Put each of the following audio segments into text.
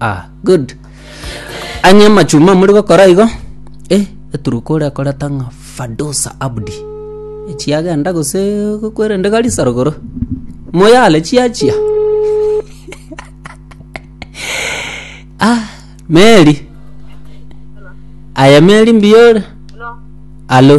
Ah good ang'e amachuma muri gokora igo eh eturuka oria akoreta ng'a fadosa abdi echi agenda gose kwerende garisa rogoro moyale chiachia ah meri aye meri mbuya ore alo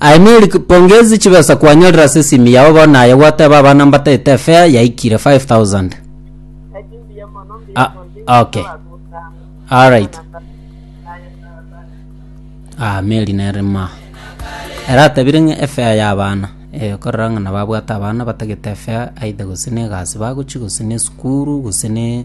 Aimeri pongezi chibesa kwanyorire ase esimu yao bono naye gwateba abana mbatete fare yaikire 5000 Ah, okay. Alright. Ah, Mary nere ma. Era atabire ng'a efea ya abana. Eh, korora ng'a nababwate abana batagete efea aidha gose ne egasi bagochi gose ne esukuru gose ne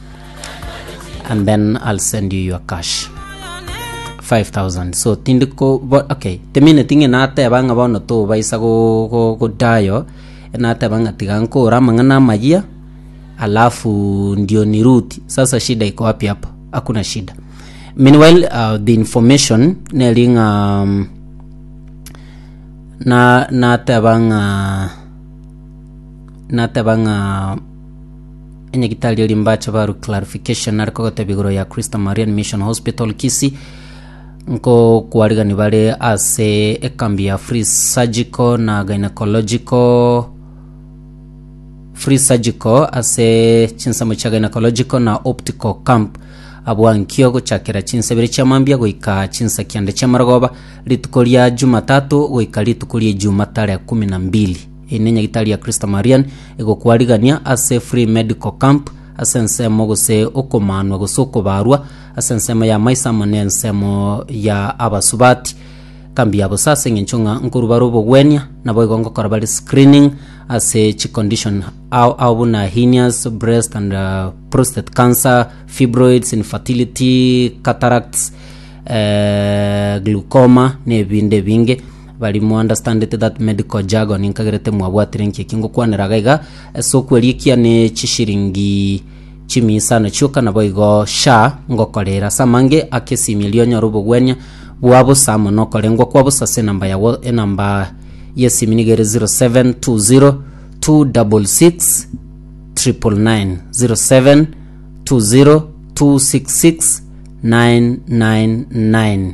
and then i'll send you your cash 5000 so tindi ko bo- okay temineti ng'e nateba ng'a bono tobaisa go- go- godayo nateba ng'a tiga nkore amang'ana amayia alafu ndio ni root sasa shida iko wapi hapo hakuna shida meanwhile uh, the information neri ng'a um, na nateba ng'a nateba ng'a enyagitari ria rimbache baru clarification nare kogotebia igoro ya Christa Marian Mission Hospital Kisii nko kwarigani bare ase ekambi ya free surgical na gynecological free surgical ase chinsemo chia gynecological na optical camp abwa nkio gochakera chinsa ibere chia mambia goika chinsa kianda chia marogoba rituko ria jumatatu goika rituko ria ijumaa tarehe kumi na mbili Eye nenyagitari ya Kristo Marian egokwarigania ase Free Medical Camp ase ensemo gose okomanwa gose okobarwa ase ensemo ya maiso amo ne ensemo ya abasubati. Kambi ya bosa ase engencho ng'a nkorwa bare obogwenia naboigo ngokora bare screening ase chi condition ao ao buna henias, breast and prostate cancer, fibroids, infertility, cataracts, eh, glaucoma na ebinde ebinge. Bari mounderstandete that medical jargon nkagerete mwabwatire nki eki ngokwanera iga iga ase okwerikia ne chishiringi chimiisano chioka naboigo sha ngokorera ase amange ake esimi eria onyore obogwenia bwa bosa amo nokorengwa kwa bosa ase enamba yago enamba yesimi niga ere 0720 266 999 0720 266 999